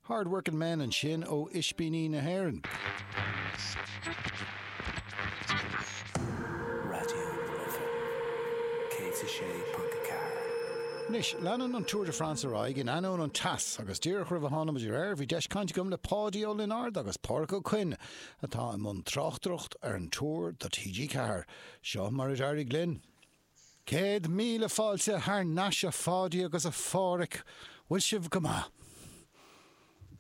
Hard working men ansin ó Ispíní na hÉireann. Anois, leanann an Tour de France ar aghaidh in ainneoin an teas agus díreach roimh a tháinig muid ar aréir bhí deis caint agam le Páidí Ó Lionáird agus Pádraic Ó Coinn atá i mbun tráchtaireacht ar an Tour do TG4. Seo mar a d'éirigh linn. Céad míle fáilte ar ais a Pháidí agus a Phádhraic, bhfuil sibh go maith?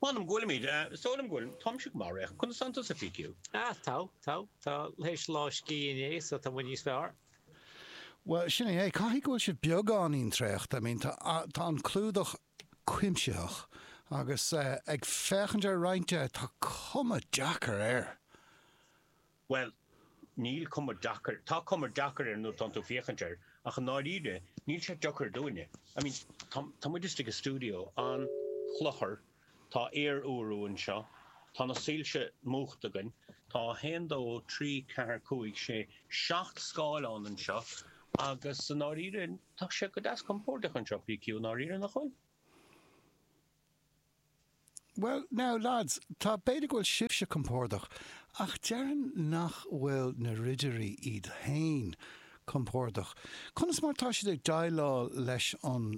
M'anam go bhfuilimid, súil agam go bhfuil, táimse go maith, conas tánn tusa PQ? Ah, tá, tá, tá, théis lá scíthe inné so tá muid níos fearr. Bhuel, sin é é, caithfidh go bhfuil sibh beagáinín traochta, I mean tá, tá an clúdach cuimsitheach agus eh ag féachaint ar roinnt de, tá cuma deacair air. Bhuel, níl cuma deacair, tá cuma deacair air nuair atá tú ag féachaint air, ach i ndáiríre, níl sé deacair dúinne. I mean, tá, tá muid istigh i stiúideo an-chluthar, tá aerú anseo, tá na soilse múchta againn, tá a haon, dó, trí, ceathair, cúig, sé, seacht scáileán anseo agus i ndáiríre, tá sé go deas compóirdeach anseo, PQ, i ndáiríre, nach bhfuil? Bhuel now lads, tá, b'fhéidir go bhfuil sibhse compordach ach déarfainn nach bhfuil na rídirí iad féin compordach. Conas mar atá siad ag déileáil leis an,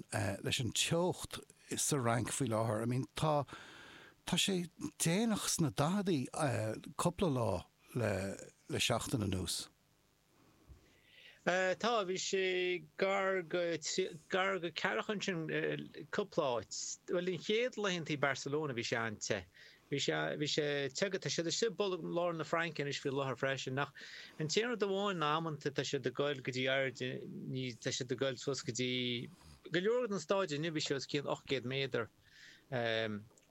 leis an teocht sa Fhrainc faoi láthair? I mean tá, tá sé déanach sna daicheadaí cúpla lá le, le seachtain anuas. Tá, bhí sé gar go gar go ceathracha ansin cúpla áit. Bhuel an chéad laethanta i Barcelona bhí sé an-te. Bhí sé bhí sé te agus tá siad istigh i bhfíorlár na Fraince anois faoi láthair freisin ach an t-aon rud amháin ná amanta tá siad ag gol go dtí airde, tá siad ag gol suas go dtí go leor den stáid inniu bhí sé os cionn 800 méadar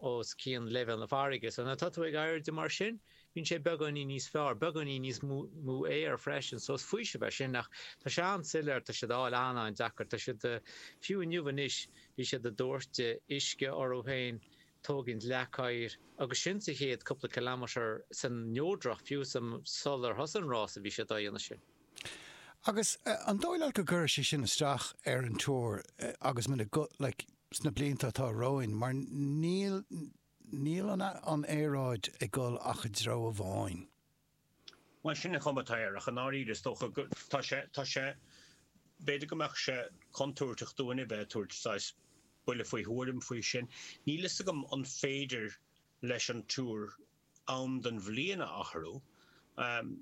os cionn leibhéal na farraige. So nuair atá tú ag airde mar sin, bíonn sé beagáinín níos fearr, beagáinín níos mó aer freisin. So is faoiseamh é sin ach tá sé an-soiléir, tá siad á fháil an-an-deacair. Tá siad a, fiú inniu anois, bhí siad a' doirteadh uisce orthu féin, tógaint leac oighir agus sin sa chéad cúpla kilometre san neodrach, fiú sa, sular thosaigh an rása bhí siad á dhéanamh sin. Agus an dóigh leat go gcuirfidh sé sin isteach ar an Tour agus muna go, like, sna blianta atá romhainn mar níl níl an aeráid ag dul ach i dtreo amháin. Bhuel, sin an chuma atá air, ach i ndáiríre, is dócha go, tá sé, tá sé, b'fhéidir go mbeadh sé contúirteach dúinne bheith ag tabhairt saghas buille faoi thuairim faoi sin. Níl a fhios agam an féidir leis an Tour am den bhliain a athrú. An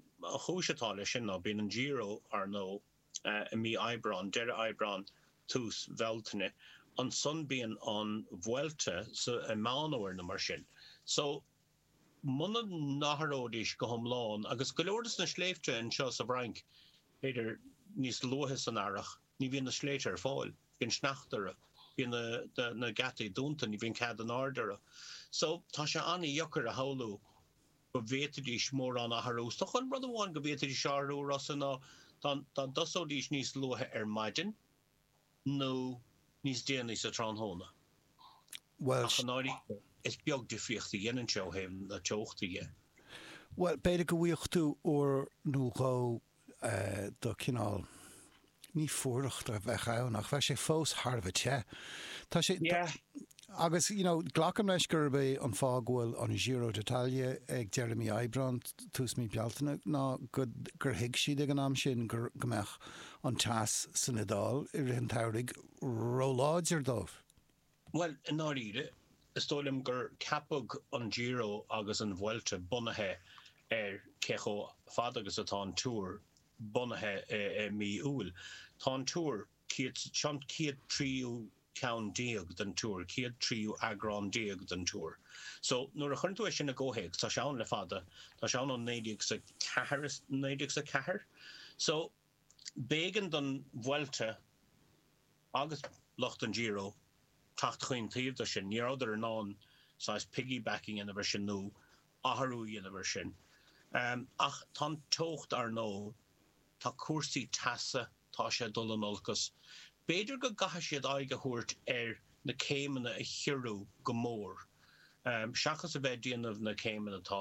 chúis atá leis sin ná bíonn an Giro, ar ndóigh, i mí Aibreán, deireadh Aibreáin, tús Bealtaine. Ansan bíonn an Vuelta sa, i Meán Fómhair nó mar sin. So, muna n-athróidís go hiomlán, agus go leor de sna sléibhte anseo sa bhFrainc, b'fhéidir níos luaithe san Earrach, ní bhíonn na sléibhte ar fáil. Bíonn sneachta orthu. Bíonn na, na geataí dúnta, ní bhíonn cead in airde orthu. So, tá sé ana-dheacair a shamhlú. go bhféadfaidís mórán a athrú. So chun rud amháin go bhféadfaidís a athrú, a rá san ná dá dtosóidís níos luaithe ar maidin nó níos déanaí sa tráthnóna. Ach i ndáiríre, is beag difríocht a dhéanann sé ó thaobh na teochta dhe. Bhuel, b'fhéidir go bhfuigheadh tú uair nó dhó de chineál, ní fuaireacht a bheadh ann ach bheadh sé fós thar a bheith te. Tá sé, yeah, agus you know glacaim leis gurb é an fáth go bhfuil an Giro d'Italia ag deireadh mí Aibreán, tús mí Bealtaine ná go, gur thuig siad ag an am sin gur, go mbeadh an teas san Iodáil i rith an tsamhraidh róláidir dóibh. Bhuel, i ndáiríre, is dóigh liom gur ceapadh an Giro agus an Vuelta bunaithe ar cé chomh fada agus atá an Tour bunaithe i mí Iúil. Tá an Tour céad, an chéad tríú ceann déag den Tour, céad tríú eagrán déag den Tour. So, nuair a chuireann tú é sin i gcomhthéacs, tá sé ann le fada, tá sé ann ó naoi déag is a ceathair, is naoi déag is a ceathair? So. B'éigean don Vuelta agus lucht an Giro teacht chaon taobh de sin. Ní rabhadar in ann saghas piggy-backing a dhéanamh ar sin nó athrú a dhéanamh ar sin. Ach tá an teocht, ar ndóigh, tá cúrsaí teasa, tá sé ag dul in olcas. B'fhéidir go gcaithfidh siad aghaidh a thabhairt ar na céimeanna a chiorrú go mór seachas a bheith ag déanamh na gcéimeanna atá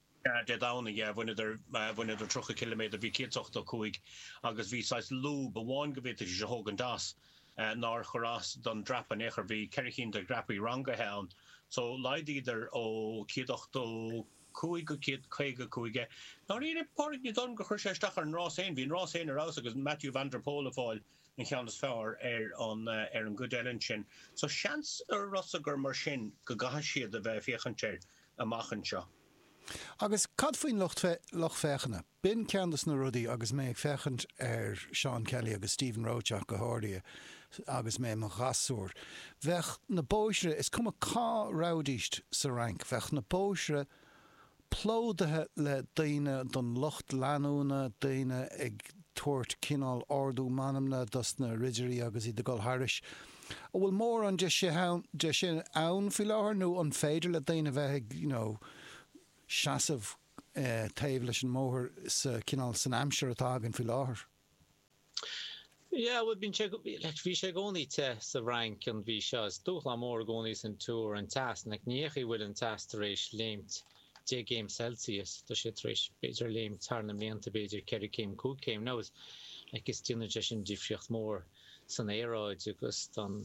Dé Domhnaigh, yeah, bhaineadar, bhaineadar tríocha ciliméadar, bhí céad is ochtó a cúig agus bhí saghas lúb amháin go bhféadfaidís a thógaint as, nár chuir as don dreap in aon chor, bhí ceithre chinn de dhreapaí rangaithe ann, so laghdaíodar ó céad is ochtó cúig go céad is caoga a cúig é. Ach i ndáiríre, a Phádraig, ní dóigh liom gur chuir sé isteach ar an rás féin, bhí an rás féin ar fheabhas agus Mathieu van der Poel ag fáil an ceann is fearr ar an, ar an gcuid eile ansin. So seans, Rossa, gur mar sin go gcaithfidh siad a bheith ag féachaint air. amach anseo. Agus cad faoin lucht féachana? B'in ceann de na rudaí, agus mé ag féachaint ar Sheán Kelly agus Stephen Roche ach go háirithe agus mé i mo ghasúr, bheadh na bóithre, is cuma cá rabhaidís sa Fhrainc, bheadh na bóithre plódaithe le daoine den lucht leanúna, daoine ag tabhairt cineál ardú meanmna dos na ridirí agus iad ag dul thairis. An bhfuil mórán de sin ann faoi láthair nó an féidir le daoine a bheith ag you know seasamh taobh leis an mbóthar sa chineál san aimsir atá againn faoi láthair? Yeah bhuel bíonn sé like bhí sé i gcónaí te sa bhFrainc an mhí seo. Is dúshlán mór i gcónaí san Tour an teas like ní hé go bhfuil an teas tar éis léimt deich gcéim Celsius tá sé tar éis b'fhéidir léimt thar na mblianta b'fhéidir ceithre céim cúig céim now agus like is déanann sé sin difríocht mór san aeráid agus don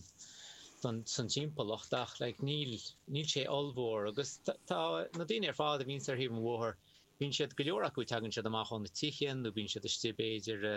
don san timpeallacht ach like níl níl sé ollmhór agus tá na daoine ar fad a bhíonn ar thaobh an bhóthair bíonn siad go leor acu tagann siad amach ó na tithe nó bíonn siad istigh b'fhéidir i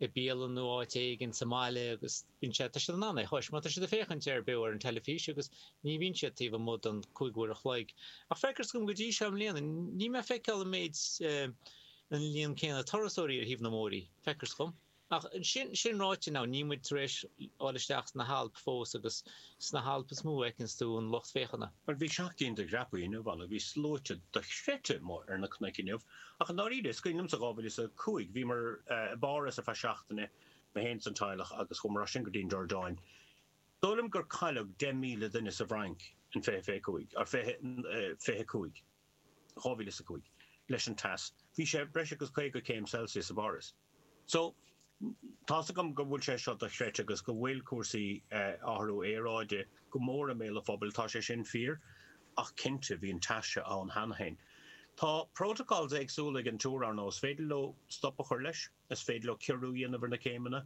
i bialann nó áit éigin sa mbaile agus bíonn sé tá siad in ann é 'cause má tá siad a féachaint ar beo ar an teilifís agus ní bhíonn siad taobh amuigh don cúig uair a chloig ach feictear dhom go dtí seo i mbliana níl mé ag feiceáil an méid an líon céanna turasóirí ar thaobh na mbóithre feictear dhom. Ach sin sin ráite now, níl muid tar éis dhul isteach sna hAilp fós agus sna hAilp is mó a fheiceanns tú an lucht féachana. Bhuel, bhí seacht gcinn de dhreapaí inniu ann, bhí sluaite dochreidte amuigh ar na cnoic inniu. Ach i ndáiríre, is cuimhin liomsa 2005, bhíomar i bPáras ar feadh seachtaine, mé féin is an teaghlach agus chuamar as sin go dtí an Dordogne. Is dóigh liom gur cailleadh 10,000 duine sa bhFrainc in fiche, fiche cúig, or fiche, fiche cúig, 2005, leis an teas. Bhí sé breis agus caoga céim Celsius i bPáras. So, tá's agam go bhfuil sé seo dochreidte agus go bhfuil cúrsaí áthrú aeráide go mór i mbéal an phobail, tá sé sin fíor, ach cinnte, bíonn an teas seo ann cheana féin. Tá protocols éagsúla ag an Tour, ar ndóigh. Is féidir leo stop a chur leis, is féidir leo ciorrú a dhéanamh ar na céimeanna,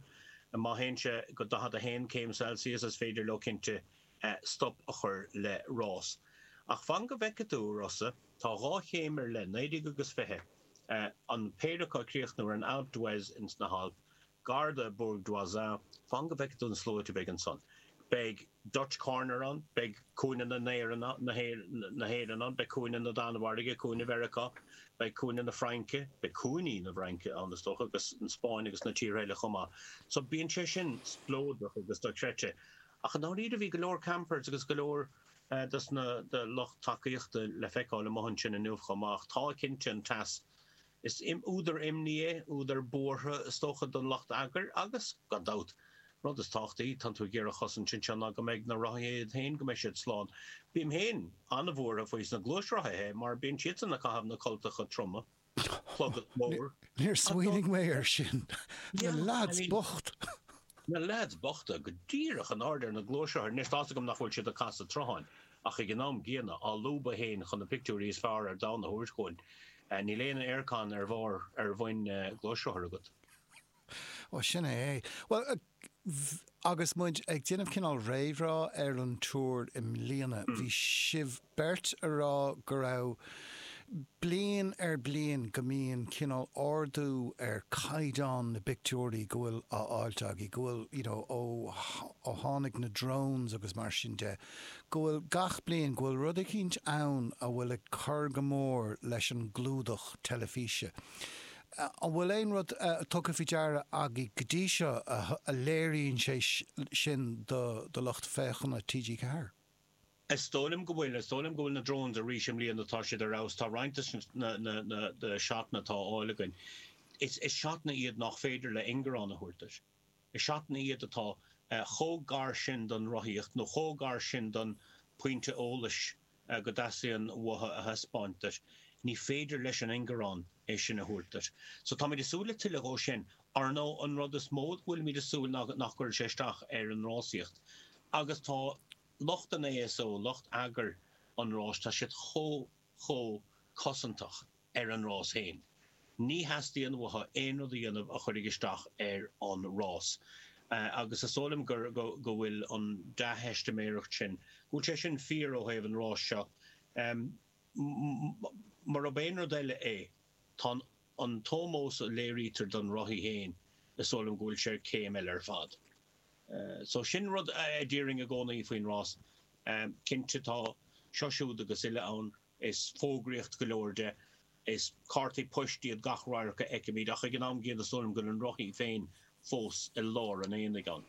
má théann sé go 41 céim Celsius, is féidir leo cinnte stop a chur le rás. Ach fan go bhfeice tú, Rossa, tá dhá chéim ar leith, 19 agus 20, an péire acu ag críochnú ar an Alpe d'Huez ins na hAilp, gar do Bourg d'Oisans. Fan go bhfeicfidh tú na sluaite a bheidh ansan. Beidh Dutch Corner ann, beidh cúinne na nÉireann, na hÉireann ann, beidh cúinne na Danmhairge, cúinne Mheiriceá, beidh cúinne na Fraince, beidh cúinní na Fraince ann is dócha agus an Spáinn agus na tíortha eile chomh maith. So bíonn sé sin spleodrach agus dochreidte. Ach i ndáiríre bhí go leor campers agus go leor. dos na de lucht tacaíochta le feiceáil amuigh ansin inniu chomh maith, ach tá, cinnte, an teas. Is údar imní é, údar buartha, is dócha, don lucht eagair agus, gan dabht, rud is tábhachtaí, tá tú ag iarraidh a chosaint is a chinntiú ná go mbeidh na rothaithe iad féin, go mbeidh siad slán. Bím féin an-bhuartha faoi sna gluaisrothaithe mar bíonn siadsan ag caitheamh na cultacha troma. clogad mór. Níor smaoinigh mé air sin. Na leaids bocht. Na leaids bochta, go díreach in airde ar na gluaisrothair. Anois, tá's agam nach bhfuil siad ag casadh troitheáin, ach ag an am gcéanna, á lúbadh féin chun na pictiúirí is fearr ar domhan a thabhairt chugainn, níl aon aircon ar bharr ar mhuin gluaisrothair agat. Bhuel, sin é é. Bhuel, agus muid ag déanamh cineál réamhrá ar an Tour i mbliana, bhí sibh beirt a rá go raibh bliain ar bliain go mbíonn cineál ardú ar caighdeán na bpictiúirí go bhfuil á fháil againn, go bhfuil, you know, ó, ó tháinig na drones agus mar sin de, go bhfuil gach bliain, go bhfuil rud eicínt ann a bhfuil ag cur go mór leis an gclúdach teilifíse. An bhfuil aon rud tugtha faoi deara agaibh go dtí seo a léiríonn sé sin do lucht féachana TG4? Is dóigh liom go bhfuil. Is dóigh liom go bhfuil na drones arís i mbliana. Tá siad ar fheabhas. Tá roinnt de na seatanna atá á fháil againn, is seatanna iad nach féidir le ingearán a thabhairt duit. Is seatanna iad atá chomh gar sin don rothaíocht nó chomh gar sin don phointe eolais go dteastaíonn uathu a thaispeáint duit. Ní féidir leis an ingearán é sin a thabhairt duit. So táimid ag súil le tuilleadh dhó sin. Ar ndóigh, an rud is mó go bhfuilimid ag súil ná nach gcuireann sé isteach ar an rásaíocht. Agus tá lucht an ASO, lucht eagair an ráis, tá siad chomh. chomh cosantach ar an rás féin. Ní theastaíonn uathu aon rud a dhéanamh a chuirfidh isteach ar an rás. Agus is dóigh liom go bhfuil an dea-theistiméireacht sin, go bhfuil sé sin fíor ó thaobh an ráis seo. Murab aon rud eile é, tá an. An t-ómós a léirítear don rothaí féin, is dóigh liom go bhfuil sé ar céim eile ar fad. So sin rud a déarfainn i gcónaí faoin rás. Cinnte tá seo siúd agus uile ann, is fógraíocht go leor de, is cártaí poist iad gach radharc a fheicimid ach ag an am céanna is dóigh liom go bhfuil an rothaí féin fós i lár an aonaigh ann.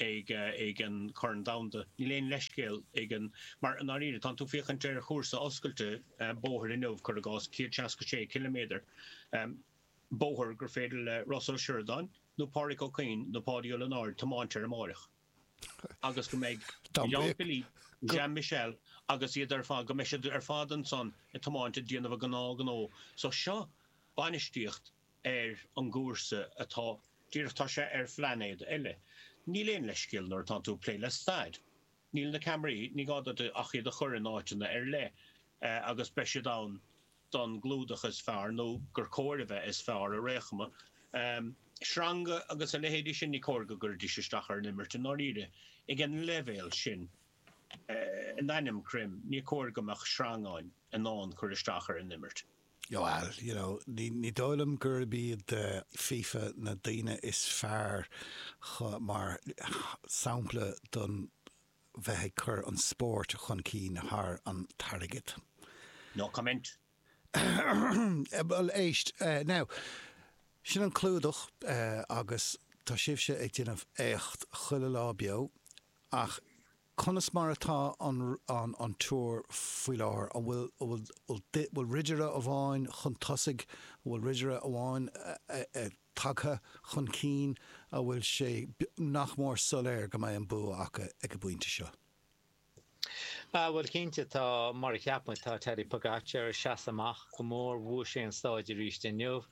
ag an Corn Domhanda. Níl aon leithscéal ag an. Mar i ndáiríre, tá tú ag féachaint ar chúrsa oscailte bóthair inniu, cur i gcás, 166 ciliméadar bóthair gur féidir le Ros Ó Sioradáin nó Pádraic Ó Coinn nó Páidí Ó Lionáird tiomáint air amáireach agus go mbeidh Jean-Philippe, Jean-Michel agus iad ar fad, go mbeidh siad ar fad ansan ag tiomáint ag déanamh a ngnáthghnó. So seo bainistíocht. ar an gcúrsa atá díreach tá sé ar phlainéad eile. Níl aon leithscéal nuair atá tú ag plé le staid. Níl na ceamaraí, ní gá duit ach iad a chur in áiteanna ar leith agus beidh siad ann don gclúdach is fearr nó gur cóir a bheith is fearr a réamadh. Sreanga agus a leithéidí sin, ní cóir go gcuirfidís isteach ar an imirt i ndáiríre. Ag an leibhéal sin, in ainm Croim, ní cóir go mbeadh sreangáin in ann cur isteach ar an imirt. Bhal, you know, ní, ní dóigh liom gurb iad FIFA na daoine is fearr chu, mar shampla le bheith ag cur an spóirt chun cinn thar an t-airgead. No comment. Bhal, éist, now, sin an clúdach agus tá sibhse ag déanamh éachta chuile lá beo ach Conas mar atá an triúr faoi láthair? An bhfuil ridire amháin chun tosaigh? An bhfuil ridire amháin tagtha chun cinn a bhfuil sé nach mór soiléir go mbeidh an bua acu ag an bpointe seo? Bhuel cinnte, tá mar a cheap muid, tá Tadej Pogačar ag seasamh amach go mór. Bhuaigh sé an stáid arís inniu.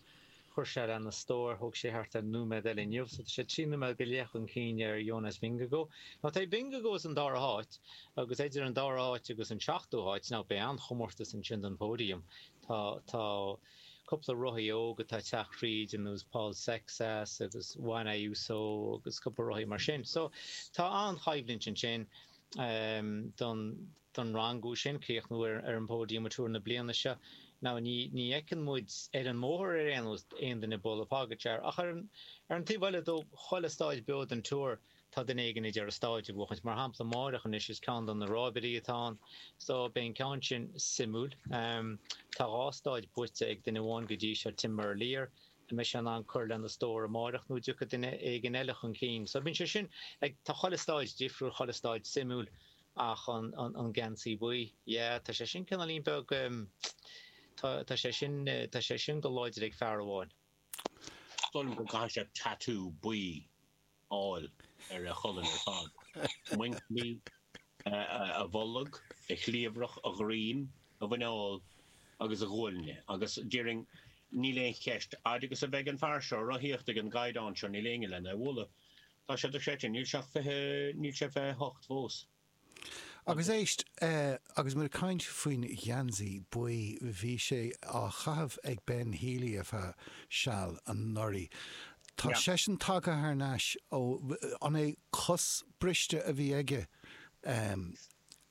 Chuir sé lena stór, thóg sé thart ar nóiméad eile inniu, so tá sé trí nóiméad go leith chun cinn ar Jonas Vingegaard. Now tá Vingegaard san dara háit agus idir an dara háit agus an seachtú háit, now beidh an-chomórtas ansin don phodium. Tá, tá cúpla rothaí óg atá ag teacht thríd ar nós Paul Seixas agus Juan Ayuso agus cúpla rothaí mar sin. So tá an-choimhlint ansin don. don rangú sin, críochnú ar an bpóidiam i dTour na bliana seo. Now ní fheiceann muid ar an mbóthar ar aon nós aon duine ag bualadh Pogačar ach ar an taobh eile de chuile stáid beo den Tour tá duine éigin ag iarraidh stáid a bhuachaint, mar shampla amáireach anois is ceann de na ráibirí atá ann so beidh an ceann sin suimiúil. Tá dhá stáid buaite ag duine amháin go dtí seo, Tim Merlier, an mbeidh sé in ann cur lena stór amáireach nó an dtiocfaidh duine éigin eile chun cinn? So bíonn sé sin ag, tá chuile stáid difriúil, chuile stáid suimiúil. Ach an geansaí buí. Yeah, tá sé sin cineáilín beag, em, tá, tá sé sin, tá sé sin go láidir ag fear amháin. Sílim go gcaithfidh sé tattoo buí a fháil ar a cholainn ar fad. Muinchillí, eh, a bholg, a chliabhrach, a dhroim, a mhuineál agus a ghuailne. Agus déarfainn, níl aon cheist, fhaid agus a bheidh an fear seo ag rothaíocht ag an gcaighdeán seo, níl éinne lena a bhualadh. Tá sé dochreidte. Níl sé fiche, níl sé fiche a hocht fós. Agus éist, agus muid ag caint faoin gheansaí buí, bhí sé á chaitheamh ag Ben Healy ar feadh seal anuraidh. Tá seisean tagtha ar ais ó, an é cos briste a bhí aige?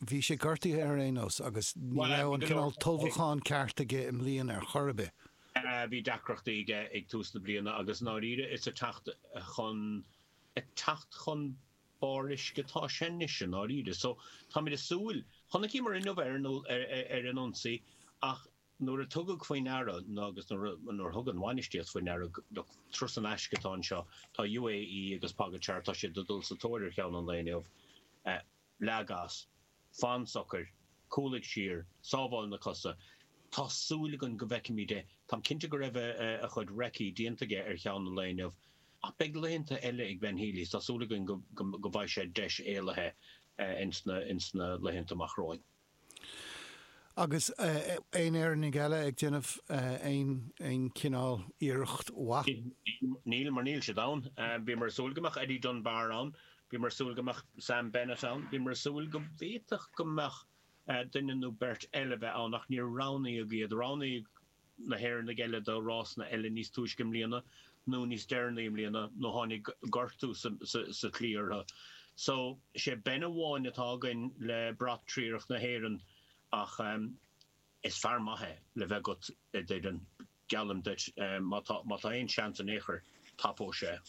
Bhí sé gortaithe ar aon nós agus ní raibh an cineál ullmhúchán ceart aige i mbliana ar chor ar bith. Bhí deacrachtaí aige ag tús na bliana agus i ndáiríre is ag teacht chun, ag teacht chun barr uisce atá sé anois i ndáiríre. So, táimid ag súil, chonaicíomar inniu é ar an ionsaí ach nuair a tugadh faoi ndeara agus nuair a, nuair a thug an bhainistíocht faoi ndeara, look, turas in aisce atá anseo, tá UAE agus Pogačar, tá siad ag dul sa tóir ar cheann an lae inniu. Leag as, fan socair, cúlaigh siar, sábháil na cosa, tá súil againn go bhfeicfimid é. Táim cinnte go raibh a chuid recce déanta aige ar cheann an lae inniu. Ach beidh laethanta eile ag Ben Healy is tá súil againn go bhfaighidh sé deis éalaithe ins na laethanta amach romhainn. Agus aon Éireannaigh eile ag déanamh aon chineál iarracht mhaith? Níl, mar níl siad ann. Bhíomar ag súil go mbeadh Eddie Dunbar ann, bhíomar ag súil go mbeadh Sam Bennett ann, bhíomar ag súil go bhféadfadh go mbeadh duine nó beirt eile bheith ann ach níor roghnaíodh iad. Roghnaíodh na hÉireannaigh eile do rásanna eile níos túisce i mbliana nó níos deireanaí i mbliana nó tháinig gortú sa tslí orthu. So, sé Ben amháin atá againn le brat trídhathach na hÉireann ach is fear maith é le bheith agat i d'fhoireann, geallaim duit. Má tá aon seans in aon chor, tapóidh sé é.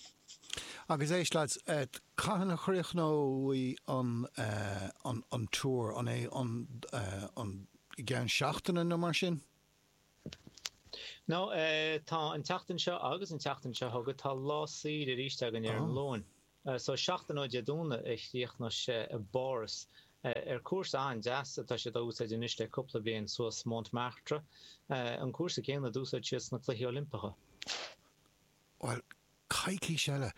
Agus éist leat, cathain a chríochnóidh an Tour, an é i gceann seachtaine nó mar sin? Ó tá an tseachtain seo agus an tseachtain seo chugainn, tá lá saoire arís againn ar an Luan. So seachtain ó Dé Domhnaigh a chríochnóidh sé i bPáras ar cúrsa an-deas atá siad á úsáid anois le cúpla bliain suas Montmartre, an cúrsa céanna a d'úsáid siad sna Cluichí Oilimpeacha. Bhuel, coicís eile.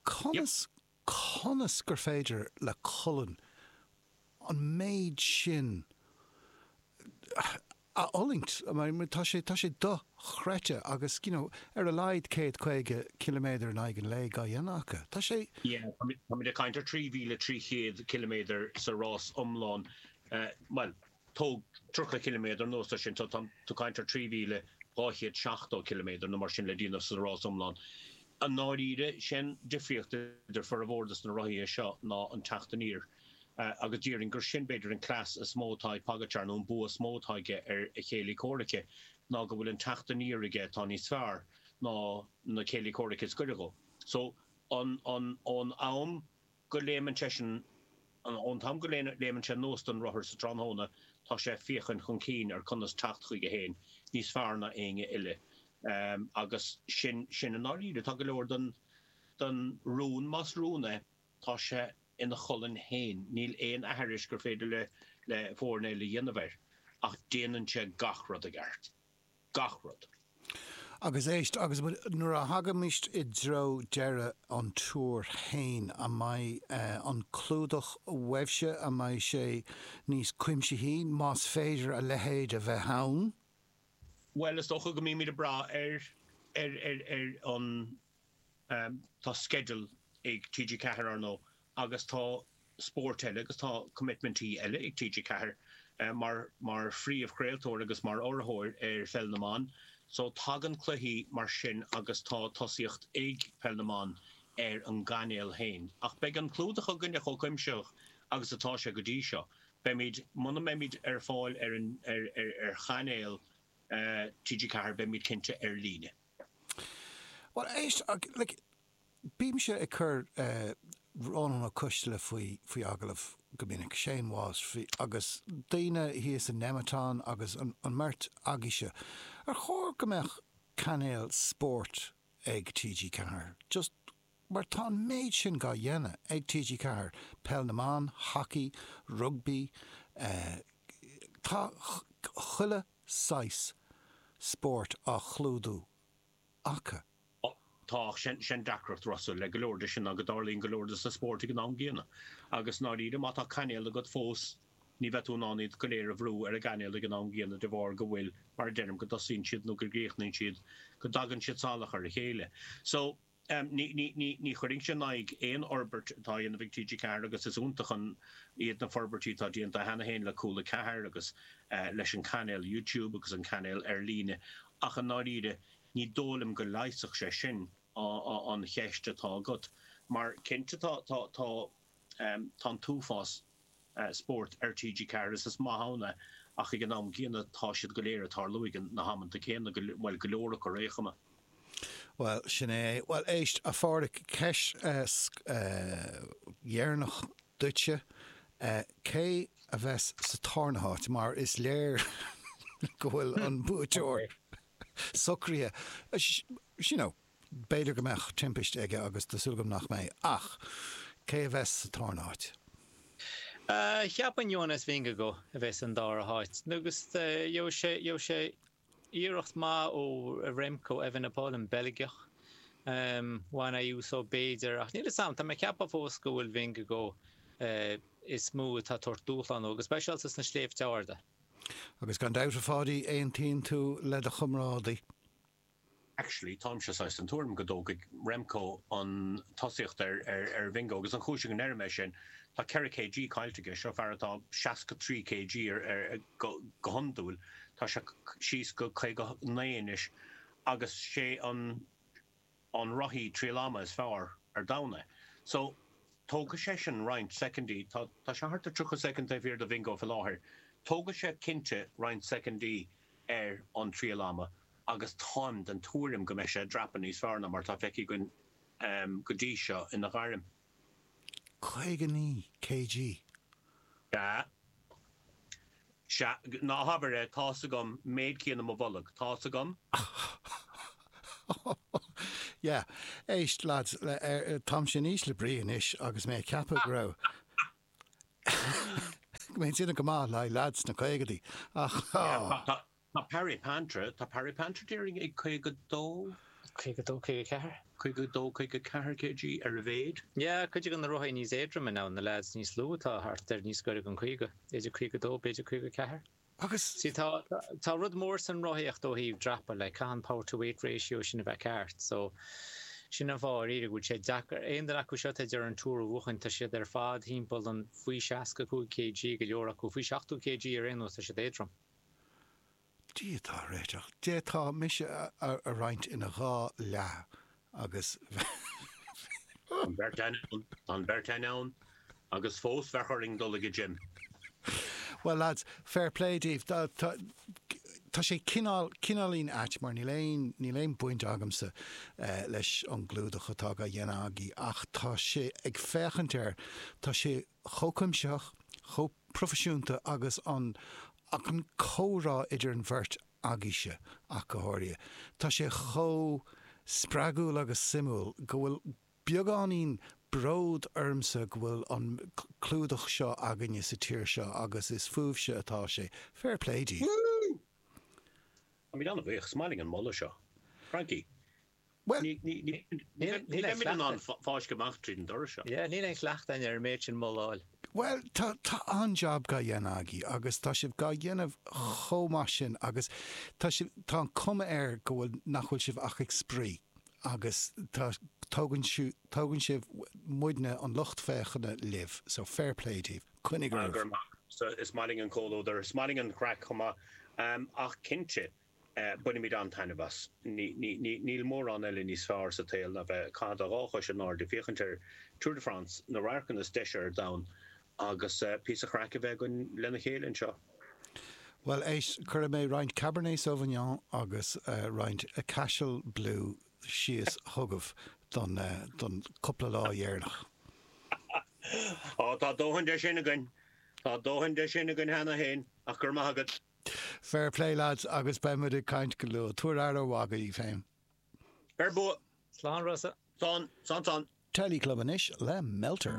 Conas Conas gur féidir le colainn an méid sin a fhulaingt? Tá sé dochreidte agus ar a laghad céad caoga ciliméadar in aghaidh an lae á dhéanamh acu. Táimid ag caint ar 3,300 ciliméadar sa rás iomlán. tóg 30 ciliméadar anuas de sin, tá tá tú ag caint ar 3,270 ciliméadar nó mar sin le déanamh sa rás iomlán. I ndáiríre, sé an difríocht idir fear ar bord sna rothaithe seo ná an teacht aniar agus déarfainn gur sin b'fhéidir an cleas is mó atá ag Pogačar nó an bua is mó atá aige ar a chéilí comhraice ná go bhfuil an teacht aniar aige atá níos fearr ná na céilí comhraice is gaire dhó. So an an ón am go léimeann sé sin an, ón am go léimeann sé anuas den rothar sa tráthnóna tá sé ag féachaint chun cinn ar conas teacht chuige féin níos fearr ná éinne eile agus sin, sin i ndáiríre. Tá go leor den, den rún, más rún é, tá sé ina cholainn féin. Níl aon aithris gur féidir le, le foirne eile a dhéanamh air ach déanann sé gach rud i gceart. gach rud. Agus éist, agus nuair a thagaimid i dtreo deireadh an Tour féin, an mbeidh an clúdach uaibhse, an mbeidh sé níos cuimsithí, más féidir a leithéid a bheith ann? Bhuel, is dócha go mbímid ag brath ar Tá sceideal ag TG4, ar ndóigh, agus tá spóirt eile agus tá coimitmintí eile ag TG4 mar phríomhchraoltóir agus mar urraitheoir ar Pheil na mBan. So tagann cluichí mar sin agus tá tosaíocht ag Peil na mBan ar an gcainéal féin. Ach beidh an clúdach againne chomh cuimsitheach agus atá sé go dtí seo. Beimid, muna mbeimid ar fáil ar chainéal TG4, beimid cinnte ar líne. Bhuel, éist, like, bímse ag cur Rónán Ó Coistealla faoi agallamh go minic, Shane Walsh agus daoine thíos i Nemeton agus an mbeirt agaibhse. Ar chóir go mbeadh cainéal spóirt ag TG4? Just mar tá an méid sin dhá dhéanamh ag TG4, Peil na mBan, Hockey, Rugbaí, tá chuile saghas spóirt á chlúdú acu. Tá, ach sin deacracht, Russell, le go leor de sin ná go dtarlaíonn go leor de na spóirt ag an am gcéanna. Agus i ndáiríre, má tá cainéal agat fós, ní bheidh tú in ann iad go léir a bhrú ar an gcainéal ag an am gcéanna de bharr go bhfuil, mar a deirim, go dtosaíonn siad nó go gcríochnaíonn siad, go dtagann siad salach ar a chéile. So. Ní chuirfinnse in aghaidh aon fhorbairt atá á dhéanamh ag TG4 agus is iontach iad na forbairtí atá déanta cheana féin le Cúla 4 agus leis an cainéal YouTube agus an cainéal ar líne ach i ndáiríre ní dóigh liom go leigheasfadh sé sin an cheist atá agat mar cinnte tá tá tá an t-uafás spóirt ar TG4 is is maith ann é ach ag an am gcéanna tá siad go léir ag tarlú ag na hamanta céanna, bhuel go leor acu ar aon chuma. Bhuel, sin é é. Bhuel, éist, a Phádraig, ceist dheireanach duitse, cé a bheas sa tarna háit mar is léir go bhfuil an buaiteoir socraithe, you know? B'fhéidir go mbeadh timpist aige agus tá súil agam nach mbeidh. Ach cé a bheas sa tarna háit? Cheapfainn Jonas Vingegaard a bheidh san dára háit agus gheobhaidh sé iarracht maith ó Remco Evenepoel, an Beilgeach. Juan Ayuso b'fhéidir ach níl 'fhios a'm. Tá mé ag ceapadh fós go bhfuil Vingegaard is mó a bheidh ag tabhairt dúshlán dó go speisialta sna sléibhte arda. Agus gan dabht a Pháidí, aontaíonn tú le do chomrádaí. actually táimse saghas den tuairim go dtógfaidh Remco an tosaíocht ar Vingegaard agus an chúis go ndeirim é sin tá 4 kg caillte aige, seo fear atá 63 kg go hiondúil tá sé síos go 59 anois agus sé an rothaí triail ama is fearr ar domhan é so tógfaidh seisean roinnt soicindí, tá sé thart ar 30 soicind taobh thiar de Vingegaard faoi láthair, tógfaidh sé cinnte roinnt soicindí ar an triail ama agus táim den tuairim go mbeidh sé ag dreapadh níos fearr ná mar atá feicthe againn go dtí seo ina ghairm. 59 kg? Sea. Sea. Ná habair é, tá's agam, méid ceann i mo bholg, tá's agam. Yeah. Éist, lads, táimse in ísle brí anois agus mé ag ceapadh go raibh. Go mbeidh duine go maith le leaids sna caogaidí ach tá. Tá Perry Pantra, tá Perry Pantra d'iarraidh ag caoga dó? Caoga dó, caoga ceathair. Caoga dó, caoga ceathair kg ar a mhéid. Yeah, cuid de na rothaithe níos éadroime now, na leaids níos lú atá thart ar níos goire gon caoga, b'fhéidir caoga dó, b'fhéidir caoga ceathair. Agus. Sea, tá, tá, tá rud mór san rothaíocht ó thaobh dreapadh, like, caitheann power to weight ratio sin a bheith ceart. So, sin an fáth dáiríre go bhfuil sé deacair. Aon duine acu seo atá ag iarraidh an Tour a bhuachaint, tá siad ar fad thimpeall an, faoi 65 kg, go leor acu faoi 70 kg ar aon nós, tá siad éadrom. Dia dá réiteach. D'fhéadfá mise a roinnt ina dhá leath, agus bheadh. Tá an bheirt fhéin ann, tá an bheirt fhéin ann agus fós bheadh orainn dul ag an gym. Bhuel lads, fair play daoibh. Tá sé cineál, cineáilín ait mar níl, níl aon bhaint agamsa leis an gclúdach atá á dhéanamh agaibh ach tá sé, ag féachaint air, tá sé chomh cuimsitheach, chomh proifisiúnta agus an comhrá idir an bheirt agaibhse ach go háirithe. Tá sé chomh spreagúil agus suimiúil go bhfuil beagáinín bród ormsa go bhfuil an clúdach seo againne sa tír seo agus is fúibhse atá sé. Fair play díbh. Woo! Táimid an-bhuíoch. Is maith linn an moladh seo. Frankie, Bhuel, ní bheidh muid in ann fáisceadh amach tríd an doras seo. Níl aon chleachtadh againn ar an méid sin molláil. Bhuel, tá an-jab dhá dhéanamh agaibh agus tá sibh dhá dhéanamh chomh maith sin agus tá sibh, tá an cuma air go bhfuil, nach bhfuil sibh ach ag spraoi agus tá, tógann sibh, tógann sibh muidne, an lucht féachana, libh so fair play daoibh. Coinnigí oraibh. Go raibh maith agat. Is maith linn an comhluadar. Is maith linn an chraic chomh maith ach cinnte. Bainimid an-taitneamh as. Níl mórán eile níos fearr sa tsaol ná bheith ag caitheamh a dhá chois in airde, ag féachaint ar Tour de France, na radharcanna is deise ar domhan, agus píosa craic a bheith againn lena chéile anseo. Bhuel, éist, cuirfidh mé roinnt Cabernet Sauvignon agus roinnt Cashel Blue síos chugaibh don chúpla lá dheireanach. Ó, tá dóthain de sin againn. Tá dóthain de sin againn cheana féin, ach go raibh maith agat. Fair play lads agus beidh muid ag caint go luath. Tabhair aire mhaith dhaoibh féin. Beir bua! Slán Rossa! Slán, slán, slán. Teilí Club anois le Melter.